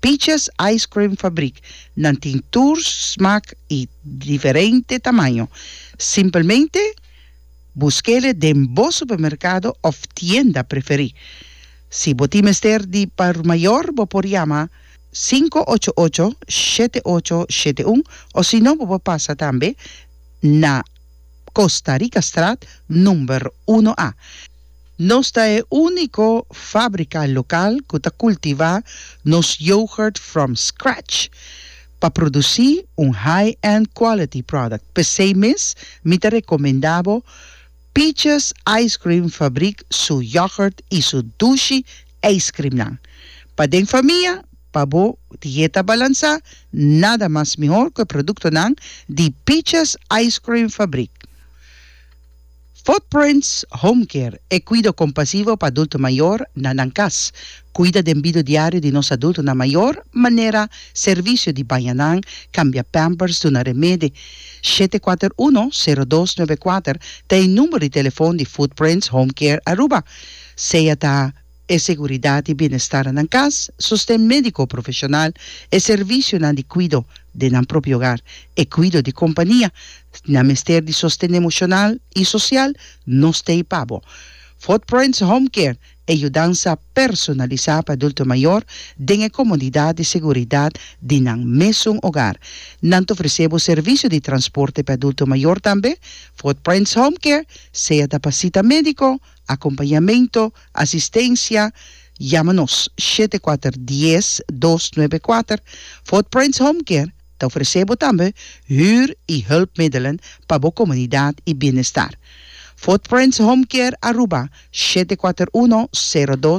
Peaches Ice Cream Fabrik, nan tin tur smak i diferente tamaño. Simpelmente busk'e den bo supermerkado òf tienda preferí. Si bo tin mester di por mayor bo por yama sinku ocho ocho, shete ocho, shete un osino bo por pasa tambe na Costa Ricastraat number uno A. Nos ta e úniko fábrika lokal ku ta kultivá nos yoghurt from scratch pa produsí un high-end quality product. P'esei mes mi ta rekomendá bo Peaches Ice Cream Fabriek su yoghurt i su dushi eiskrimnan. Pa den famia, pa bo dieta balansá, nada mas mihor ku e produktonan di Peaches Ice Cream Fabriek. Footprints Home Care, e kuido kompasivo pa adulto mayor na nan kas, kuida den bido diario di nos adultonan mayor manera servisio di baña nan, kambia pampers, duna remede. Shete kuater uno, sero dos nuebe kuater ta e numero di telefon di Footprints Home Care Aruba, sea ta. e seguridat i bienestar nan kas, sosten médiko profeshonal, e servisionan di kuido den nan propio ogar, e kuido di kompania, nan mester di sosten emoshonal i sosial, no stay pa bo. Footprints Home Care, e yudansa personalisá pa adulto mayor den e komodidat i seguridat di nan mesun ogar. Nan ta ofresé bo servisio di transporte pa e adulto mayor tambe. Footprints Home Care, sea ta pa sita médiko, Acompañamento, Asistencia, Yama nos shete kuater dies dos nuebe kuater. Fort Prince Home Care ta ofrece bo tambe huur y hulpmiddelen pa bo comunidad y bienestar. Fort Prince Home Care Aruba shete kuater uno sero dos.